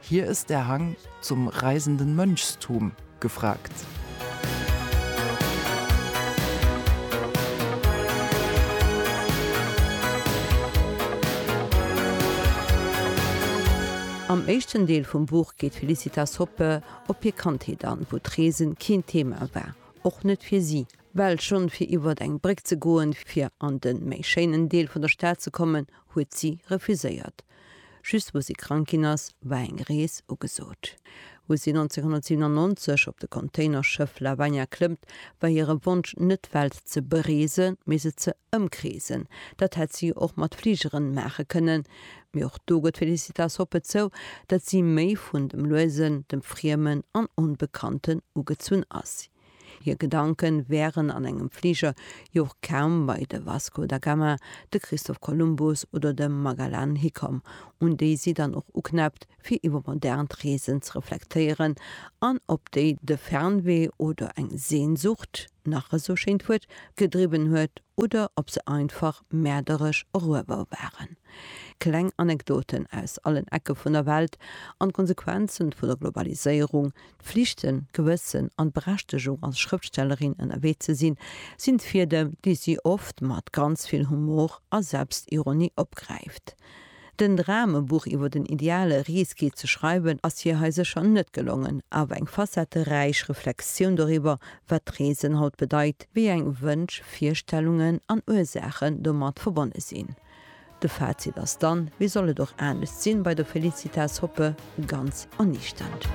Hier ist der Hang zum reisenden Mönchstum gefragt. Am éischten Deel vum Buch geet d'Felicitas Hoppe op hir Kandheet an, wou d'Reesen keen Thema war, och net fir si. Well schonn fir iwwert eng Bréck ze goen, fir an den méi schéinen Deel vun der Stad ze kommen, huet si refuséiert. Just wou si krank ginn ass, war eng Rees ugesot. Wou si 1997 op de Containerschëff Lavagna klëmmt, war hire Wonsch net d'Welt ze bereesen, mee se ze ëmkreesen. Dat hätt si och mat Fligeren maache kënnen. Mee och do gëtt d'Felicitas Hoppe zou, datt si méi vun dem Luesen, dem Friemen an Onbekannten ugezunn ass. Hir Gedanke wären an engem Fliger jo och kaum bei de Vasco da Gama, de Christoph Kolumbus oder de Magellan hikomm, un déi si dann och uknäppt, fir iwwer modernt Reesen ze reflektéieren an op déi de Fernwee oder eng Sehnsucht, nach esou schéint Wuert, gedriwwen huet oder ob se einfach mäerderesch eruewer waren. Kleng Anekdoten aus allen Ecke vun der Welt an d'Konsequenze vu der Globaliséierung, Flichten, Gewëssen an d'Berechtegung als Schrëftstellerin ënnerwee ze sinn, sinn d'Fiedem, déi si oft mat ganz vill Humor a Selbstironie opgräift. Den Dram, e Buch iwwer den ideale Risky ze schreiwen, ass hir hei sécher net gelongen, awer eng facetteräich Reflexioun doriwwer, wat d'Reesen haut bedeit, wéi eng Wënsch, Virstellungen an Ursaachen domat verbonne sinn. De Fazit ass dann, wéi soll et och anescht sinn, bei der Felicitas Hoppe ganz erniichternd.